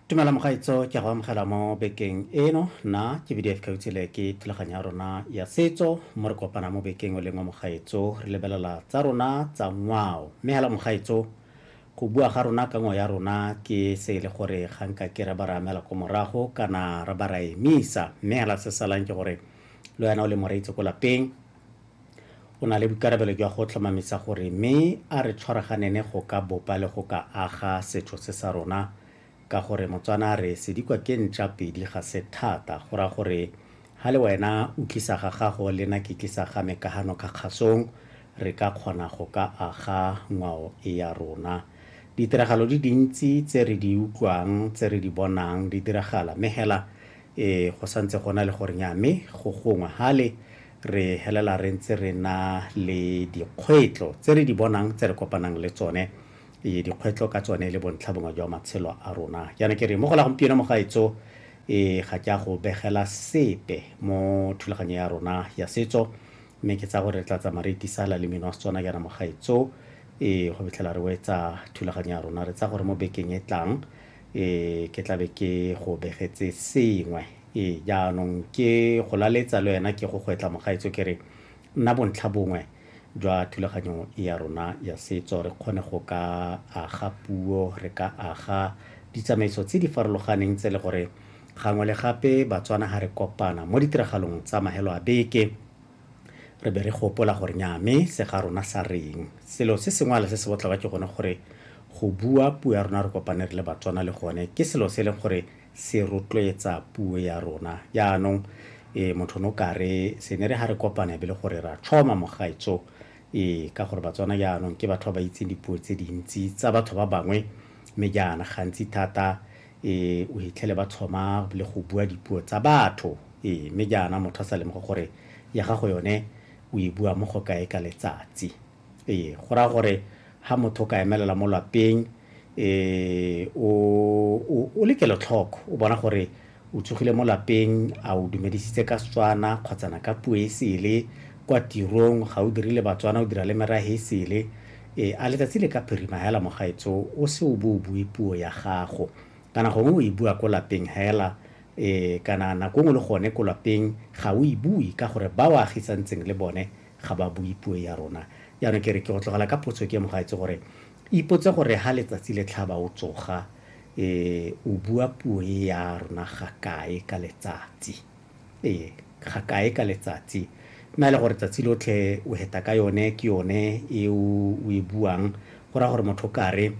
tumela mogaitso ke a go amogela mo bekeng eno na ke bdf kgautshile ke thulaganyo ya rona ya setso mo re kopana mo bekeng o leng wa mogaitso re lebelela tsa rona tsa ngwao mme hela mogaitso go bua ga rona ka ngwao ya rona ke se e le gore ga nka ke re ba re amela ko morago kana re ba ra emisa mme hela se salang ke gore le wena o le moreitse ko lapeng O na le boikarabelo jwa go tlhomamisa gore mme a re tshwaraganene go ka bopa le go ka aga setho se sa rona ka gore Motswana a re sedikwa ke ntša pedi ga se thata go ra gore ha le wena o tlisa ga gago le na ke tlisa ga me ka hano ka kgasong re ka kgona go ka aga ngwao e ya rona. Ditiragalo di dintsi tse re di utlwang tse re di bonang di diragala mme hela E, go sa ntse gona le gore nya, mme go gongwe hale re helela re ntse re na le dikgwetlo tse re di bonang tse re kopanang le tsone e, dikgwetlo ka tsone le bontlha bongwe jwa matshelo a rona jaana ke re mo go la gompieno mo gaetso e ga ke a go begela sepe mo thulaganyo ya rona ya setso mme ke tsa gore re tla tsamaya re itisala le mino wa setswana jaana mo gaetso e go fitlhela re wetsa thulaganyo ya rona re tsa gore mo bekeng e tlang Ee, ke tla be ke go begetse sengwe. Ee, jaanong ke go laletsa le wena ke go gwetla mogaetso ke re nna bontlha bongwe jwa thulaganyo ya rona ya setso re kgone go ka aga puo re ka aga ditsamaiso tse di farologaneng tse le gore gangwe le gape batswana ga re kopana mo ditiragalong tsa mahelo a beke Re be re gopola gore nyaa me se ga rona sa reng. Selo se sengwale se se botlhokwa ke gone gore go bua puo ya rona re kopane re le Batswana le gone ke selo se e leng gore se rotloetsa puo ya rona. Jaanong e motho o ne o kare se ne re ha re kopana e be le gore ra tšhoma mogaetso e ka gore Batswana jaanong ke batho ba ba itseng dipuo tse dintsi tsa batho ba bangwe mme jaana gantsi thata Ee, o hitlhele ba tlhoma le go bua dipuo tsa batho. Ee, mme jaana motho a sa lemoge gore ya gago yone o e bua mo go kae ka letsatsi. Ee, go raya gore ha motho o ka emelela mo lapeng, ee, o, o, o le kelotlhoko, o bona gore o tsogile mo lapeng, a o dumedisitse ka Setswana kgotsana ka puo e sele, kwa tirong ga o dire le Batswana, o dira le merahe e sele, E, a letsatsi le ka phirima hela mogaetso o se o bo o bue puo ya gago. Kana gongwe o e bua ko lapeng hela, e, kana nako nngwe le gone ko lapeng ga o e bue ka gore ba o agisantseng le bone ga ba bue puo ya rona. Jaanong ke re ke go tlogela ka potso ke mogaetso gore ipotse gore ha letsatsi le tlhaba o tsoga, e, o bua puo e ya rona ga kae ka letsatsi. ee ga kae ka letsatsi mme a le gore tsatsi lotlhe o heta ka yone ke yone e o e buang go raya gore motho kare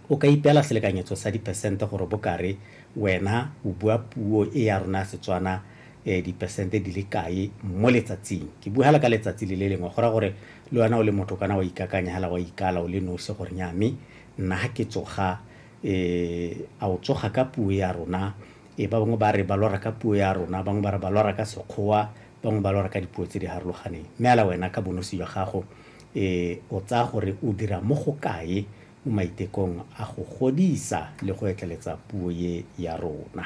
o ka ipeela selekanyetso sa dipersente gore bo kare wena o bua puo e ya rona ya setswana um dipersente di le kae mo letsatsing ke bua hela ka letsatsi le le lengwe go raya gore le wena o le motho kana wa ikakanya hela wa ikala o le nosi gore nyame nna ga ke tsoga um a o tsoga ka puo ya rona Ee, ba bangwe ba re ba lora ka puo ya rona, bangwe ba re ba lora ka Sekgowa, bangwe ba lora ka dipuo tse di harologaneng. Mme ala wena ka bonosi jwa gago, ee, o tsaya gore o dira mo go kae mo maitekong a go godisa le go etleletsa puo ye ya rona?